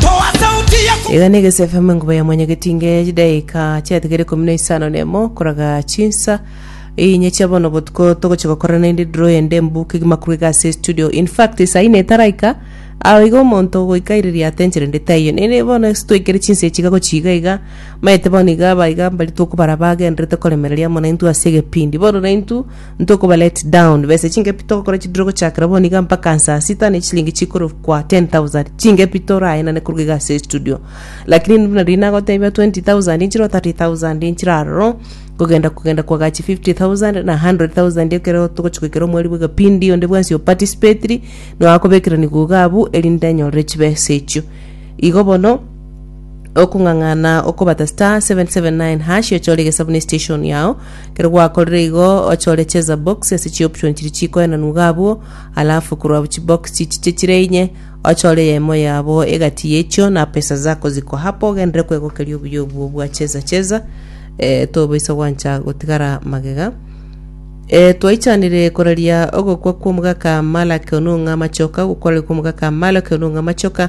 Toa sauti ya ku- Iga negese FM enkuba ya mwanyagetinge chidaika chiatigere ikomi na isano nemo koraga chinsa inye chia bono botuko togochi gokora naende draw ende mbu kegima korwa ase studio in fact saa ine etaraika ao iga omonto goika aireria atenchere nde taiyo nere bono ase twaikere chinsa echi iga gochi iga iga maete bono iga aba iga mbari tokobara bagendererete koremereria mono intwe ase egepindi bono naintwe Ntokoba let down besa chingepi togokora chidiro gochakera bono iga mpaka nsaa sita ne chilingi chikorokwa 10000 chingepi toraenane koruga iga ase estudio lakini buna riria nagotebia 20000 nchiroo 30000 nchire aroro kogenda kogenda kwagachi 50000 na 100000 ekero togochia goikera omweri bwa egepindi onde bwensi opatisipetiri nigo akobekerani iga iga abwo erinde anyorere chibesa echio igo bono Okong'ang'ana okobata star seven seven nine hash ochore egesabu ne station yao kero gwakorire igo ochore cheza box ase chioption chiria chikoenanwa iga abwo alafu korwa abwo chibox chichiche chire inye ochore eyemo yabo egati yechio na pesa zako ziko hapo ogenderere kwegokeria obuya obwo bwa cheza cheza eh, tobaisa gwancha gotigara magega E, twaichanire koraria ogokwa kw'omogaka Malaki onong'a amachoka, gokorera kw'omogaka Malaki onong'a amachoka,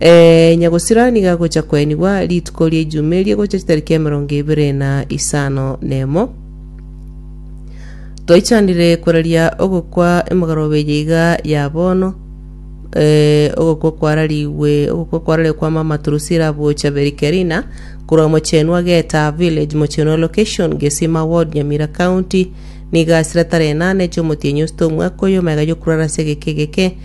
Ee, nyagosira niga agocha koenigwa rituko ria Ijumaa eria gocha chitariki emerongo ebere na isano nemo. Twaichanire koraria ogokwa emogaroba eye iga ya bono, ee, ogokwa kwararigwe, ogokwa kwararigwe kwa Mama Turusira Buocha Berikerina, korwa mochenwa Geta Village, mochenwa Location, Gesima Ward, Nyamira County, niga asira tara enana echomotienyi osito omwaka oyo, omega yokurara ase egeke egeke,